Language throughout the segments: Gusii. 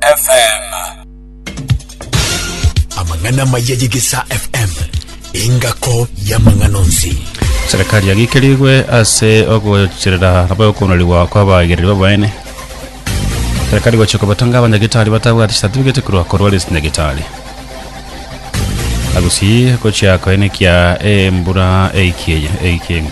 FM. Amang'ana maya y'Egesaa FM engako y'amang'ana onsi. Serikali yagikerigwe ase ogocherera nabo okonorigwa kw'abaegereri babaene. Serikali gochia kobatanga abanyagitari batabwati certificate korwa korwa ase nyagitari. Agusii gochia koenekia embura eikeye eikeng'u.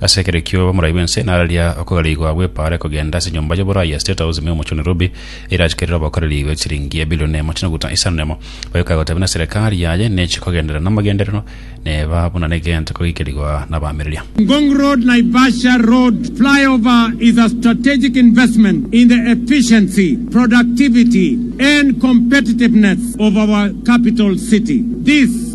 Ase ekero ekio omorai bw'ense nararia okogariigwa gw'epaara ekogenda ase enyomba y'oborai ya State House ime y'omochie o Nairobi, eira achika erire obokoreri bwe chiliingi ebilioni emo chinyaguta isano nemo. Oyoka agoteba ng'a eserekari yaye nechi kogenderera namagenderero neba buna negento kogikerigwa nabamireria. Ngong Road Naivasha Road Flyover is a strategic investment in the efficiency, productivity and competitiveness of our capital city. This.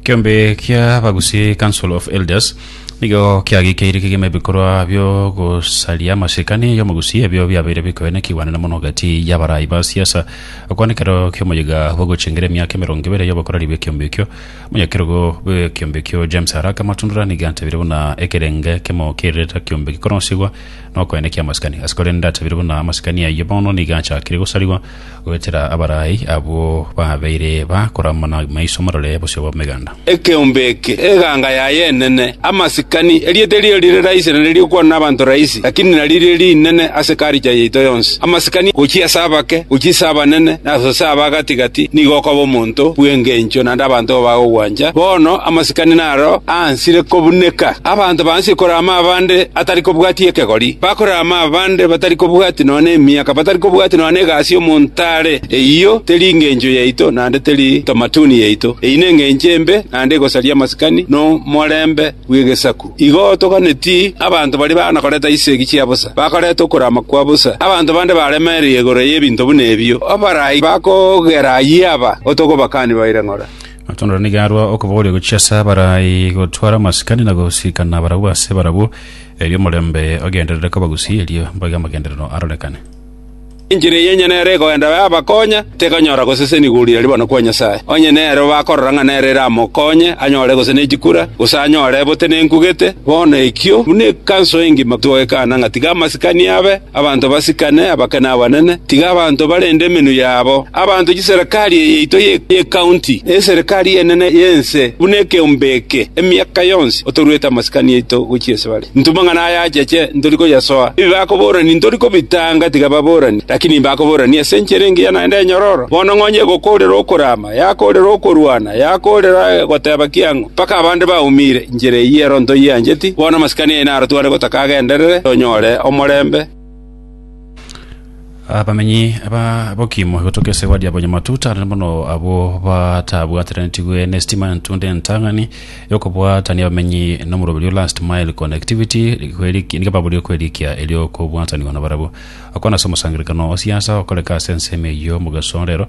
Ekeombe ki'abagusi, Council of Elders, nigo kiagikeire kegima ebikorwa biogosaria amasikani y'omogusi ebio biabeire bikoene ekiwanera mono gati y'abarai ba siasa. Okwana ekero ki'omoyega bw'ogochengera emiaka emerongo ebere y'obokoreri bw'ekiombe ekio, omonyakerogo bw'ekiombe ekio James Araka Matundura nigo atabire buna ekerenge kemo ki'erireta kiombe gikoronsigwa nokoenekia amasikani. Ase korende atabire buna amasikani ayio bono nigo achakire gosarigwa goetera abarai abwo babeire bakorama na maiso marore bosio bw'ameganda. Ekeombe eke, eganga yaye enene, amasikani, erieta erio rire raisi na ririkokwanwa n'abanto raisi, lakini naririo rinene ase culture yaito yonsi. Amasikani, gochia ase abake, gochia ase abanene, na ase aba gati-gati, nigo okoba omonto bw'engencho naende abanto igo bagogwancha. Bono amasikani naro aansire kobuneka. Abanto baansie korama abande atari kobwatia ekegori, bakorama. amabande batari kobwatia nonya nemiaka, batari kobwatia nonya negasi y'omonto are. Eyio teri engencho yaito, naende teri tamatuni yaito. Eyio nengencho embe, naende egosaria amasikani na omorembe bw'egesaku. Igo toganeti abanto baria baana koreta chisegi chia bosa, bakoreta okorama kwa bosa. Abanto bande baremereire igoro y'ebinto buna ebio, abarai bakogera ayio aba, otogobakani baire ng'ora. Amatondo nigo arua okobooria gochia ase abarai gotwara amasikani na gosikana barabwo ase barabwo. Erio omorembe ogenderere kobagusii erio mboigo amagenderero arorekane. Enchera eye onye nero ekoenda yabakonya, tekonyora gosesenigwa oria aria bono kwa Nyasae. Onye nero bakorora ng'a nero eramokonye anyore gose ne chikura, gose anyore botenenku gete, bono ekio buna ekanso engima togwekaana ng'a tiga amasikani abe, Abanto basikane, abake na abanene, tiga abanto barende emenwa yabo, abanto chiserekari eye yaito y'ekaunti, na eserekari enene y'ense buna ekeombe eke, emiaka yonsi otoruete amasikani aito gochia ase bare. Ntuma ng'a naye acheche, ntori koyasoa. Ebi bakoborani ntori kobitanga, tiga baborani, rakini mbakoborani ase enchera engiya naende enyororo, bono ng'onye egokoorera okoraama. Yakoorera okorwana, yakoorera goteba kiang'o, mpaka abande baumire inchera eyio ero ntoyiancheti. Bono amasikani aino aratware gotaka agenderere, tonyore omorembe. Abamenyi aba Bokimu egotoka esegwa ria Bonyamatuta nere mono abwo batabwateranetigwe nesitima entunde entang'ani y'okobwatania abamenyi nomorobi oria last mile connectivity kweriki- nigo baboria kwerikia erio okobwatanigwa nabarabwo. Okwana ase omosangererekano o siasa okoreka ase ensemo eyio mogeso rero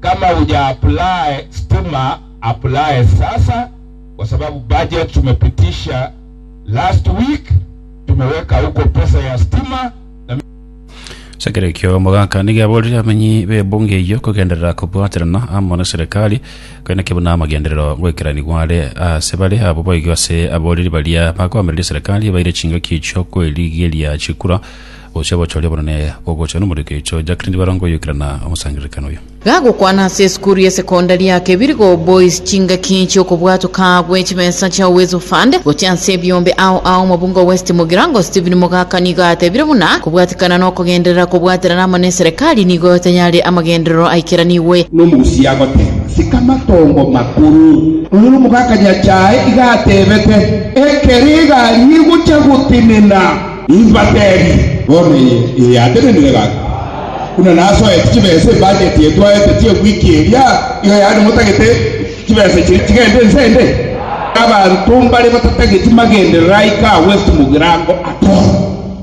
Kama uja apply stima apply sasa kwa sababu budget tumepitisha last week tumeweka huko pesa ya stima na Asegere ekio omogaka nigo aborire abamenyi b'ebunge eyio kogenderera kobwaterana amo na Serikali koineke buna amagenderero goikeranigwa are ase bare abwo boigo ase aboriri baria bakoamereria Serikali baire chingaki chi'okwerigeria chikura Gose abochoria bono ne bogocha nomorweki oicho Jack tindi baranga oyoikerana omosangererekano oyo. Gagokwana ase esukuru ya sekondari ya Kebirigo Boys chingaki chi'okobwatoka gwe chibesa chia Uwezo Fund gochia ase ebiombe ao ao Mobungo West Mugirango Stephen Mogaka nigo atebire buna kobwatikana nokogenderera kobwaterana amo neserekari nigo tayare amagenderero aikeranigwe. Nomogusi agoteba sika matongo makuru. Oyore omogaka nyachae iga atebete, Ekero egari egocha gotenena. Nimbateebie, bono eye eyatenenire gaki, buna nasoete chibesa ebajeti eye twaete chi'ewiki eria, nigo yaani motagete chibesa chiria chigende inse ende? Abanto mbare batatageti magenderera aike agwo ase mogirango atoro,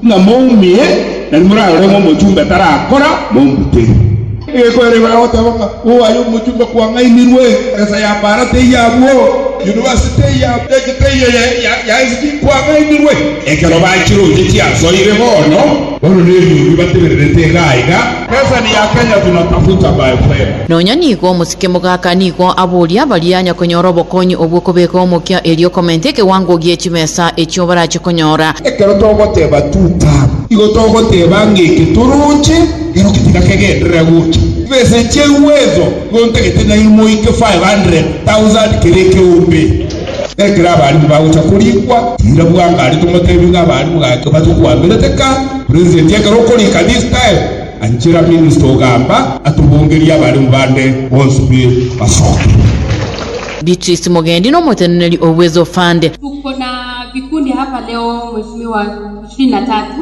ng'a moumie, na nimorarore ng'a omochumbe tarakora, mombutere. Egekoererwa agoteeba ng'a, Oaye omochunga kwang'aimirwe, egesa ya baara teiyo abwo, yunivasiti teiyo abwo, eki teiyo ya esiki kwang'aimirwe. Ekero ba chiroche chiasoire bono. Bono nebiubi batebererete iga aiga. Pesa ni ya Kenya tunatafuta my friend. Nonya nigo omosike mogaka nigo aboria baria nyakonyora obokonyi obwo kobeka omokia erio comment ekewango gie chibesa echio barache konyora. Ekero togoteba two term, igo togoteba ng'eke toroche. Inwe timonakegenderera gocha besa chia Uwezo, gontagete nainwe moike 500,000 kera ekeombe. Ekero abarimu bagocha korikwa, tiira bwango are tomotebie ng'a abarimu gaki batokoamerete ka. President ekero okorika this time, anchera minister ogamba atobongerie abarimu bande bonsi be basoke. Beatrice Mugendi n'omoteneneri o Uwezo Fund. Tuko na vikundi hapa leo mweshimiwa ishirini na tatu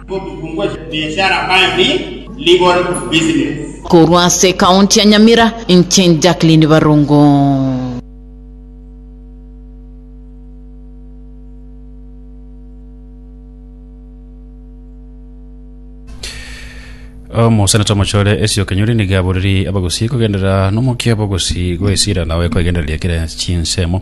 Korwa ase ekaunti ya Nyamira, inche Jacqueline Barongo. Omoseneta omochore Esio Kenyori nigo aboriri abagusii kogenderera nomokia bogusii goesira nawe koegendereria kera chinsemo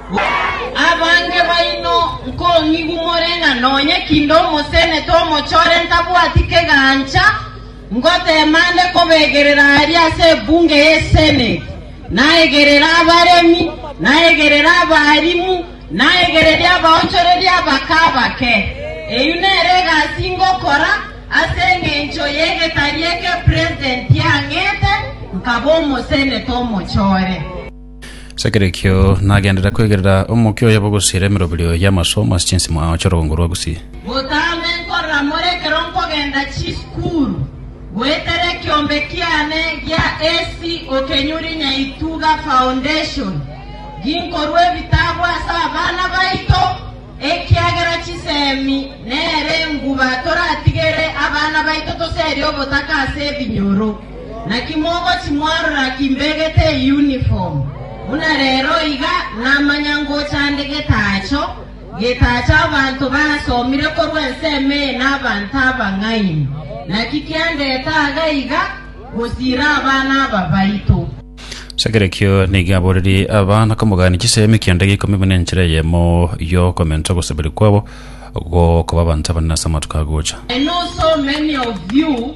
Abange baino nkong'igu more ng'a nonye kinde omosenete omochore ntabwati kegancha, ngoteema ande kobegerera aria ase ebunge y'Eseneti, naegerere abaremi, naegerere abaalimu, naegerere abaonchoreri abake abake. Eyio nere egasi ngokora ase engencho y'egetari eke presidenti ang'ete, nkaba omosenete omochore. As'ekerekio nagenderere kwegerera omokia oye bogosiera emeroberio y'amasomo ase chinsemo ao chi'orogongo rwa Gusii. Botambe nkorora more ekero nkogenda chisukuru, goetera ekiombe kiane gia AC Okenyuri Nyaituga Foundation, ginkorua ebitabu ase abana baito, ekiagera chisemi nere enguba toratigere abana baito toseria obotaka ase ebinyoro. Naki mogochi mwarora kimbegete eunifomu, buna rero iga namanya ngocha nde getacho, getacho abanto basomire korwa ensemo eye nabanto abang'aini, naki kiandete aaga iga gosiira abana aba baito. Ase ekerekio nigo aborerie abana komogania chisemi ekianda giaikumi buna enchera eyemo y'okomensa ogosabera kwabo, gokoba abanto abanene ase amatuko agocha. I know so many of you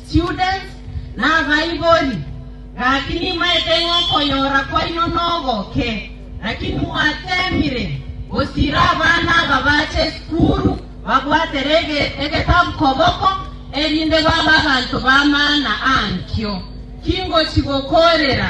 Students, Nabaibori, gaki nimaete ng'a okoyora kwaino nogoke, lakini mwateemire gosiira abana aba bache esukuru babwatere egetabu koboko, erinde babe abanto b'amaana ankio. Tingochi gokoorera.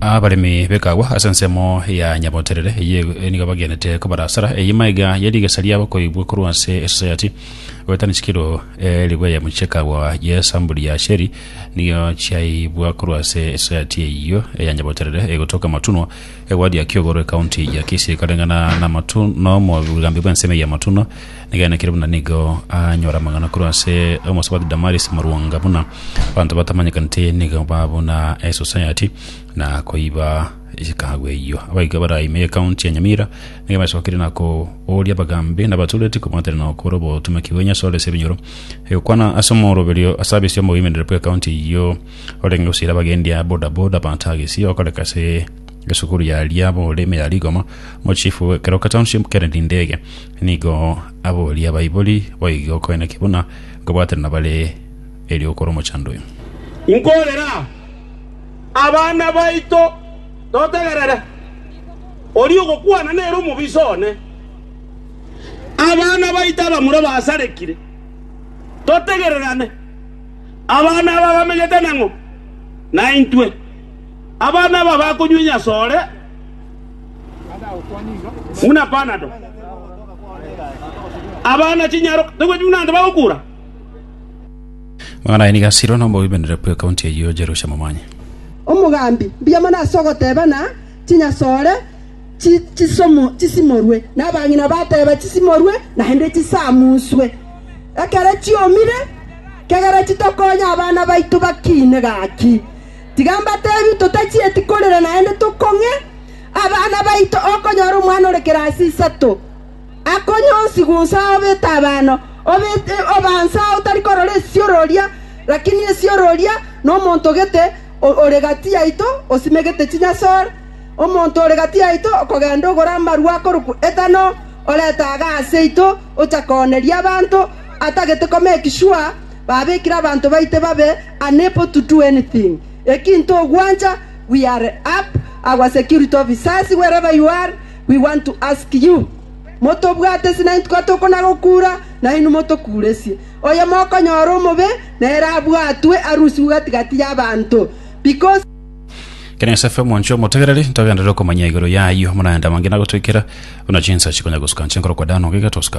Abaremi b'ekagwa ase ensemo ya Nyaboterere eye nigo bagenete kobarasara. Eye maiga ye rigesa riabo koigwa korwa ase esosayati, goetania chikiro eh, rigweyemo chi'ekagwa y'esamburi ya Asheri nigo chiaibwa korwa ase esosayati eyio ya Nyaboterere egotoka Matunwa, egwadi ya Kiogoro, ekaunti ya Kisii, ekareng'ana na Matu- na omogambi bw'ensemo ya Matunwa. Egeene, kere buna nigo anyore amang'ana korwa ase omosabati Damaris morwonga buna abanto batamanyekaneti nigo ba buna esosayati na koiba chikago eyio. Abaika bara ime y'ekaunti ya Nyamira nigo basokeire na kooria abagambi na abatureti kobwatana na gokora obotomaki bwa Nyasae ore ase ebinyoro, egokwana ase omoroberio ase abisia omogoimereria bw'ekaunti eyio orenge gosaira abagendi a bodaboda abatagisi okoreka ase esukuru ya Liabole ime ya Rigoma, omochifu bw'ekeroka township Kennedy Ndege, Nigo aboria abaibori boige okoina ki buna nkobwaterana bare erio okore omochandoi. Nkorera aa, abana baito, totegerere. Oria ogokwana nere omobisa one. Abana baito abamura basarekire, totegererane. Abana aba bamegete nang'o naintwe? Abana aba bakonywia nyasore? Buna panado. Abana chinyaro tebweti buna ande bagokura. Magana aye nigo asirwe na omobibenere bwe county eyio Jerusha Momanyi. Omogambi, mbuya mono ase ogoteba na chinyasore chi chisomo chisimorwe, na abang'ina bateba chisimorwe naende chisamuswe. Ekero chiomire, kegera chitokonye abana baito bakiine gaki. Tiga mbateebie, totachieti korera naende tokong'e abana baito okonyora omwana ore kerasi isato akonywa onsi gonsi ao b'etabano, obaanse ao otari korora esioro oria, lakini esioro oria nomonto gete ore gati yaito osimegete chinyasore. Omonto ore gati yaito okogenda ogora amarua akorokwa etano, orete aaga aseito, ocha kooneria abanto, atagete koma ekiswa, babekire abanto baite babe Unable to do anything, ekinto ogwancha, we are up our security officers wherever you are we want to ask you motobwate sina intwe tokona gokura nainwe motokuresie. Oyo mokonyora omobe nere abwatwe arusigwe gati-gati y'abanto because Kenya is FM Monchio Motegereri ntogenderere okomanya igoro yayio muna enda mangina gotwikera buna chinsa chikonya gosuka nche nkoro kwa dano giga tosuka